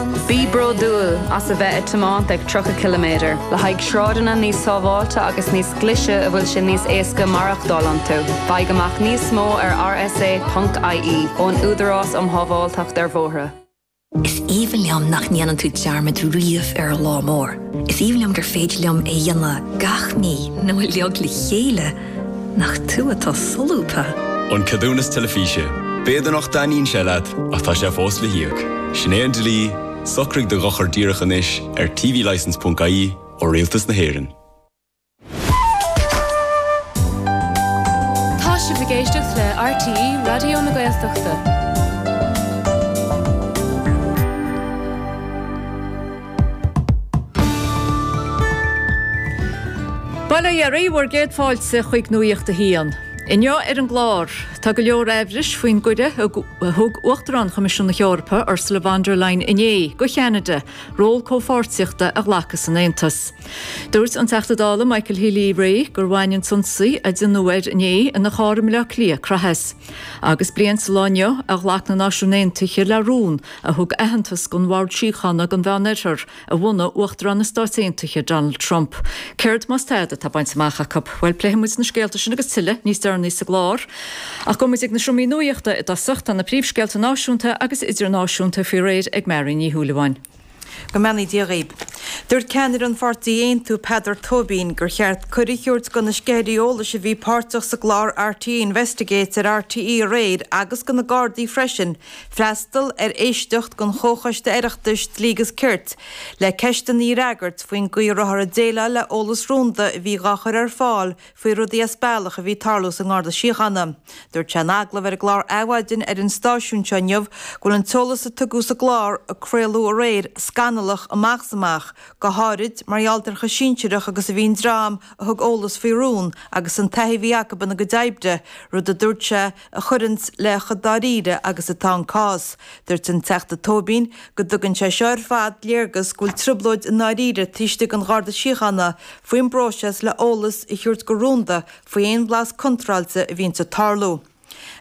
Bí bródúil as a bheith ag tiomáint ag 30 ciliméadar le haghaidh sráideanna níos sábháilte agus níos glaise a bhfuil sé níos éasca maireachtáil iontu. Faigh amach níos mó ar rsa, ie ón Údarás um Shábháilteacht ar Bhóithre. Is aoibhinn liom nach ndéanann tú dearmad riamh ar an lá mór. Is aoibhinn liom gur féidir liom é dhéanamh gach mí nó uilig le chéile! Nach tú atá solúbtha! An Ceadúnas Teilifíse, B'fhéidir nach dtaitníonn sé leat, ach tá sé fós le híoc. Sin é an dlí, socraigh do dhochar díreach anois ar tvlicense.ie ó Rialtas na hÉireann. Tá sibh ag éisteacht le RTÉ Raidió na Gaeltachta. Bail ó Dhia oraibh bhur gcéad fáilte chuig Nuacht a hAon. Inniu ar an gclár, tá go leor amhrais faoin gcuireadh a thug Uachtarán Choimisiún na hEorpa, Ursula von der Leyen inné, do Cheanada ról comhpháirtíochta a ghlacadh san Aontas. Dúirt an Teachta Dála Michael Healy-Rae gur bhain an t-ionsaí a déanadh air inné ina charr i mBleá Cliath craitheadh as. Agus bliain sa lá inniu a ghlac na Náisiúin Aontaithe le rún a thug aitheantas dhon Bhord Síochána don Mheánoirthear a bhunaigh Uachtarán na Stáit Aontaithe Donald Trump. Céard más tada atá bainte amach acu? Bhuel, pléifidh muid na scéalta sin agus tuilleadh níos deireanaí sa gclár. Ach gabhfaidh muid ag na seomra nuaíochta i dtosach, tá na príomhscéalta náisiúnta agus idirnáisiúnta faoi réir ag Máirín Ní Shúilleabháin. Go mbeannaí Dia dhaoib. Dúirt ceannaire an pháirtí Aontú, Peadar Tóibín, gur cheart cuireadh a thabhairt do na sceithirí eolais a bhí páirteach sa gclár RTÉ Investigates ar RTÉ aréir agus do na Gardaí freisin, Freastal ar éisteacht don Chomhchoiste Oireachtais Dlí gus Cirt le ceisteanna a fhreagairt faoin gcaoi a rabhthar a déileáil le eolas rúnda a bhí dhá chur ar fáil faoi rudaí as bealach a bhí ag tarlú sa nGarda Síochána. Dúirt sé in agallamh ar an gclár Adhmhaidin ar an stáisiún seo inniu go bhfuil an t-eolas a tugadh sa gclár a craoladh aréir scannalach amach is amach, go háirid mar gheall ar chomh sinsearach agus a bhí an dream a thug eolas faoi rún agus an taithí a bhí acu ina gcuid oibre, rud a dúirt sé a chuireanns le chomh dáiríre agus atá an cás. Dúirt an Teachta Tóibín go dtugann sé seo ar fad léargas go bhfuil trioblóid i ndáiríre taobh istigh den Gharda Síochána faoin bpróiseas le h-eolas a thabhairt go rúnda faoi aon bhlas contráilte a bhíonns ag tarlú.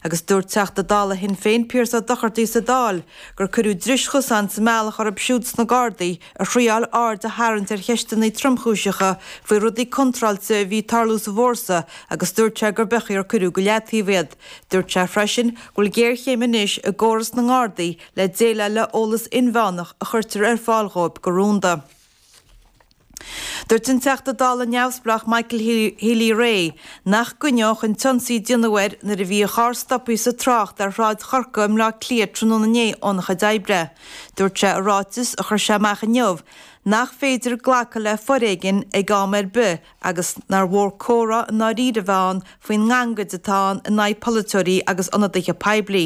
Agus dúirt Teachta Dála Shinn Féin Pearse Ó Dochartaigh sa Dáil gur cuireadh dris chosain sa mbealach orthu siúd sna Gardaí a thriáil aird a tharraingt ar cheisteanna tromchúiseacha faoi rudaí contráilte a bhí ag tarlú sa bhfórsa agus dúirt sé gur beag é ach ar cuireadh go leataobh iad. Dúirt sé freisin go bhfuil géarchéim anois i gcóras na nGardaí le déileáil le eolas inmheánach a chuirtear ar fáil dhóibh go rúnda. Dúirt an Teachta Dála neamhspleách Michael Healy Rae nach gcoinneodh an t-ionsaí a déanadh air nuair a bhí a charr stoptha sa trácht ar Shráid Chorcaí i mBleá Cliath tráthnóna inné é óna chuid oibre. Dúirt sé i ráiteas a chuir sé amach inniu nach féidir glacadh le foréigean ag am ar bith agus nár mhór comhrá i ndáiríre a bheith ann faoin ngangaid atá ann in aghaidh polaiteoirí agus ionadaithe poiblí.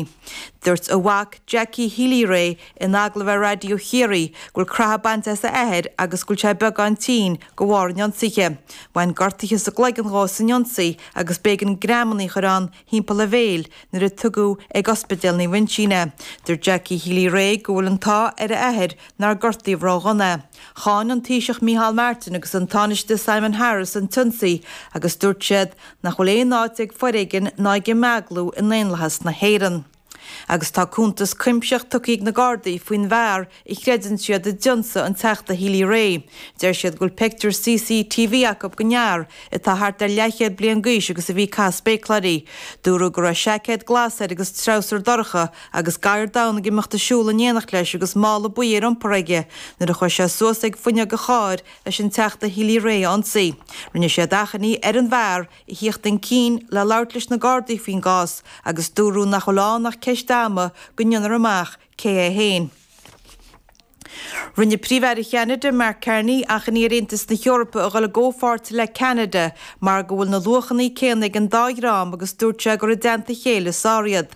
Dúirt a mhac Jackie Healy-Rae in agallamh ar Raidió Chiarraí go bhfuil creathadh bainte as a athair agus go bhfuil sé beagán tinn de bharr an ionsaithe. Bhain gortuithe sa gcloigeann dhó san ionsaí agus b'éigean greamanna a chur ann thimpeall a bhéil nuair a tugadh ag Ospidéal Naomh Uinsionn é. Dúirt Jackie Healy-Rae go bhfuil an t-ádh ar a athair nár gortaíodh ró-dhona é. Cháin an Taoiseach Micheál Martin agus an Tánaiste Simon Harris an t-ionsaí agus dúirt siad nach bhfuil aon áit ag foréigean ná ag imeaglú i ndaonlathas na hÉireann. Agus tá cuntas cuimsitheach tugtha ag na Gardaí faoin bhfear a chreideann siad a d'ionsaigh an Teachta Healy-Rae. Deir siad go bhfuil pictiúr CCTV acu go d'fhear atá thart ar leathchéad bliain d'aois agus a bhí ag caitheamh spéacláirí. Dúradh go raibh seaicéad glas air agus treabhsar dorcha agus gadhar donn ag imeacht ag siúl in éineacht leis agus mála buí ar iompar aige nuair a chuaigh sé suas ag fuinneog an chairr leis an Teachta Healy-Rae a ionsaí. Rinne siad achainí ar an bhfear a theacht chun cinn le labhairt leis na Gardaí faoin gcás agus dúradh nach bhfuil ann ach ceist ama go ndéanfar amach cé é féin. Rinne Príomh-Aire Cheanada, Mark Carney, achainí ar Aontas na hEorpa a dhul i gcomhpháirt le Ceanada mar go bhfuil na luachanna céanna ag an dá dhream agus dúirt sé gur i dteannta a chéile is fearr iad.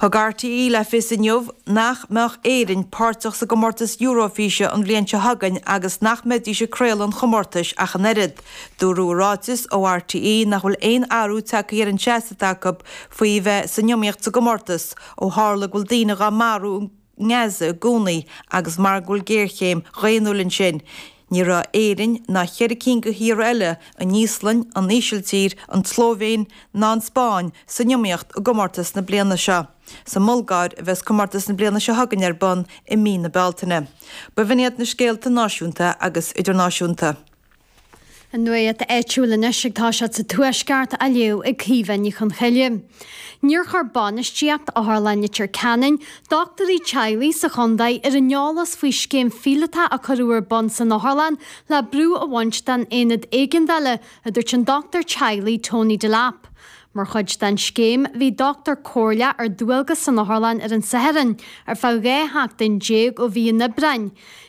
Thug RTÉ le fios inniu nach mbeadh Éirinn páirteach sa gcomórtas Eurofíse an bhliain seo chugainn agus nach mbeidís ag craoladh an chomórtais ach an oiread. Dúradh i ráiteas ó RTÉ nach bhfuil aon athrú tagtha ar an seasamh atá acu faoi bheith san iomaíocht sa gcomórtas ó tharla go bhfuil daoine dhá marú nGaza i gcónaí agus mar go bhfuil géarchéim dhaonnúil ansin, ní raibh Éirinn ná cheithre cinn de thíortha eile, an Íoslainn, an Ísiltír, an tSlóivéin ná an Spáinn, san iomaíocht i gcomórtas na bliana seo. Sa mBulgáir a bheas comórtas na bliana seo chugainn ar bun i mí na Bealtaine. B'in iad na scéalta náisiúnta agus idirnáisiúnta. An nuacht áitiúil anois ag tosacht sa Tuaisceart á léamh ag Caoimhe Ní Chonchoille. Níor chuir bainistíocht Otharlann Leitir Ceanainn dochtúirí teaghlaigh sa chontae ar an eolas faoi scéim phíolótach a cuireadh ar bun san otharlann le brú a bhaint den aonad éigeandála, a dúirt an dochtúir teaghlaigh Tony Delap. Mar chuid den scéim bhí dochtúir comhairleach ar dualgas san Otharlann ar an Satharn ar feadh 12 sheachtain ó mhí an Aibreáin.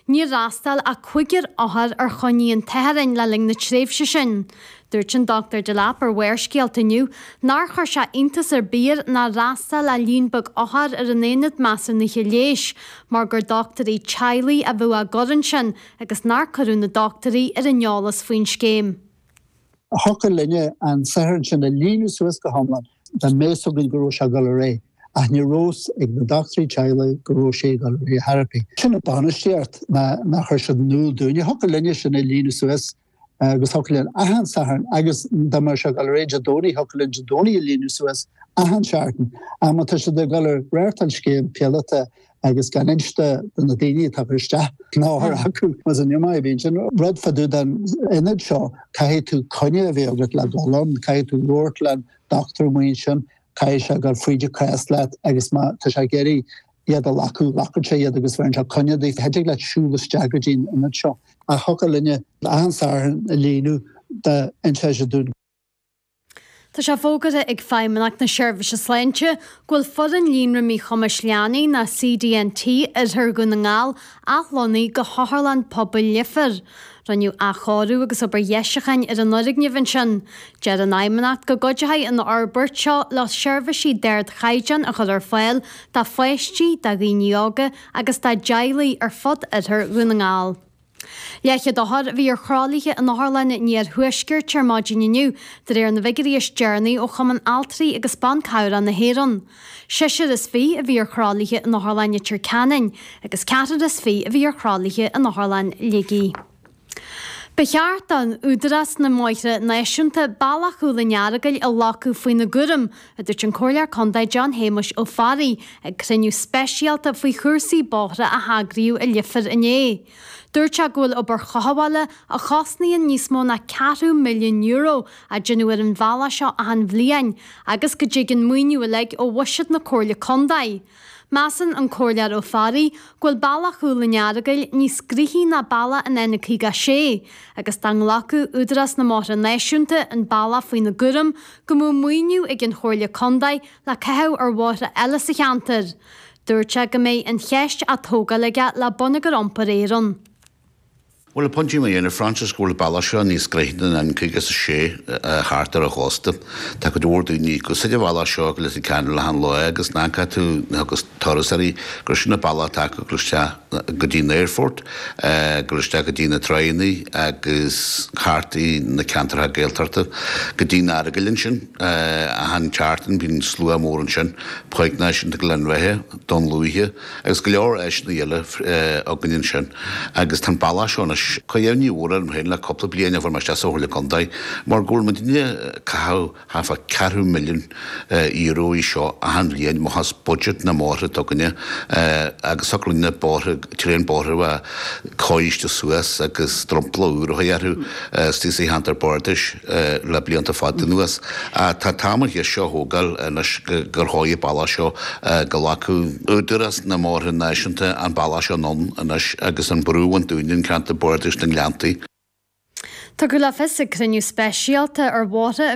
Níor fhreastail ach cúigear othar ar choinní an tSathairn le linn na tréimhse sin. Dúirt an Dochtúir Delap ar Bharrscéalta inniu nár chuir sé iontas ar bith air nár fhreastail ach líon beag othar ar an Aonad Measúnaithe Leighis mar gur dochtúirí teaghlaigh a bheadh á gcur ansin agus nár cuireadh na dochtúirí ar an eolas faoin scéim. a thiocfadh linne an Satharn sin a líonadh suas go hiomlán dá mbeadh fhios againn go raibh sé ag dul ar aghaidh, ach ní raibh fhios ag na dochtúirí teaghlaigh go raibh sé ag dul ar aghaidh thar a pí. Sin an bhainistíocht nár chuir siad in iúl dúinn. Thiocfadh linne sin a líonadh suas agus thiocfadh linn achan Satharn agus dá mbeadh sé ag dul ar aghaidh Dé Domhnaigh thiocfadh linn Dé Domhnaigh a líonadh suas achan seachtain. Ach má tá siad ag dul ag reáchtáil scéim phíolótach agus gan inste do na daoine atá ag cur isteach uaireanta acu mas an iomaí a bhíonn sin. Rud fá dtaobh den ionad seo, caithfidh tú coinne a bheith agat le dul ann, caithfidh tú labhairt le do dhochtúir mar sin, caithfidh sé dul fríd do chás leat agus má tá sé ag iarraidh iad a ghlacadh, glacann sé iad agus bheireann sé coinne duit. Chan dtig leat siúl isteach go dtí an ionad seo ach thiocfadh linne achan Satharn a líonadh dá n-inseochaí dúinn. Tá sé fógartha ag Feidhmeannacht na Seirbhíse Sláinte go bhfuil foireann Líonra Míchumais Leanaí nó CDNT Oirthear Dhún na nGall athlonnaithe go hOtharlann Pobail Leifir. Rinneadh athchóiriú agus obair dheisiucháin ar an fhoirgneamh ansin. Deir an Fheidhmeannacht go gcuideoidh an fhorbairt seo leo seirbhísí d'ardchaighdeán a chur ar fáil do pháistí, do dhaoine óga agus dá dteaghlaigh ar fud Oirthear Dhún na nGall. Leathchéad othar a bhí ar thralaithe in Otharlann an Iarthuaiscirt ar maidin inniu, de réir na bhfigiúirí is deireanaí ó Chumann Altraí agus Ban Cabhrach na hÉireann. Seisear is fiche a bhí ar thralaithe in Otharlann Leitir Ceanainn agus ceathrar is fiche a bhí ar thralaithe in Otharlann Shligigh. Ba cheart d'Údarás na mBóithre Náisiúnta bealach Chúl an Earagail a ghlacadh faoina gcúram a dúirt an Comhairleoir Contae John Shéamuis Ó Fearraigh ag cruinniú speisialta faoi chúrsaí bóithre a heagraíodh i Leifear inné. Dúirt sé go bhfuil obair chothabhála, a chosnaíonn níos mó ná ceathrú milliún euro, á déanamh ar an bhealach seo achan bhliain agus go dtig an maoiniú uilig ó bhuiséad na Comhairle Contae. Measann an Comhairleoir Ó Fearraigh go bhfuil bealach Chúl an Earagail níos gnóthaí ná bealach an N56 agus dá nglacfadh Údarás na mBóithre Náisiúnta an bealach faoina gcúram go mbeadh maoiniú ag an Chomhairle Contae le caitheamh ar bhóithre eile sa cheantar. Dúirt sé go mbeidh an cheist á tógáil aige le Bonneagar Iompair Éireann. Bhuel, an pointe atá mé a dhéanamh Frances, go bhfuil an bealach seo níos gnóthaí ná an N56 thart ar an gcósta. Tá cuid mhór daoine ag úsáid an bhealach seo go Leitir Ceanainn achan lá agus amach arís agus turas ar bith gur sin an bealach atá ag gabháil isteach go dtí an aerfort, ag gabháil isteach go dtí na tránna agus thart i na ceantartha Gaeltachta go dtí'n Earagail ansin. Achan seachtain bíonn slua mór ansin, Páirc Náisiúnta Ghleann Bheatha, Dún Lúiche, Agus go leor áiseanna eile againn ansin agus tá an bealach seo anois. Tá imní mhór orm féin le cúpla bliain ó fuair mé isteach sa Chomhairle Contae mar go bhfuil muid ag déanamh caitheamh thart fá ceathrú milliún euro air seo achan bhliain amach as budget na mbóithre atá againne agus chóireodh sin na bóithre, tréan bóithre a chóiriú suas agus dromchla úr a chur orthu. Istigh sa Cheantar Bardais le blianta fada anuas. Tá tamall thíos seo a thógáil anois gur dtóigfí an bealach seo go nglacfadh. Údarás na mBóithre Náisiúnta an bealach seo anonn anois agus an brú a bhaint dúinn i gCeantar Bardais na nGleanntaí. Tugadh le fios ag cruinniú speisialta ar bhóithre a.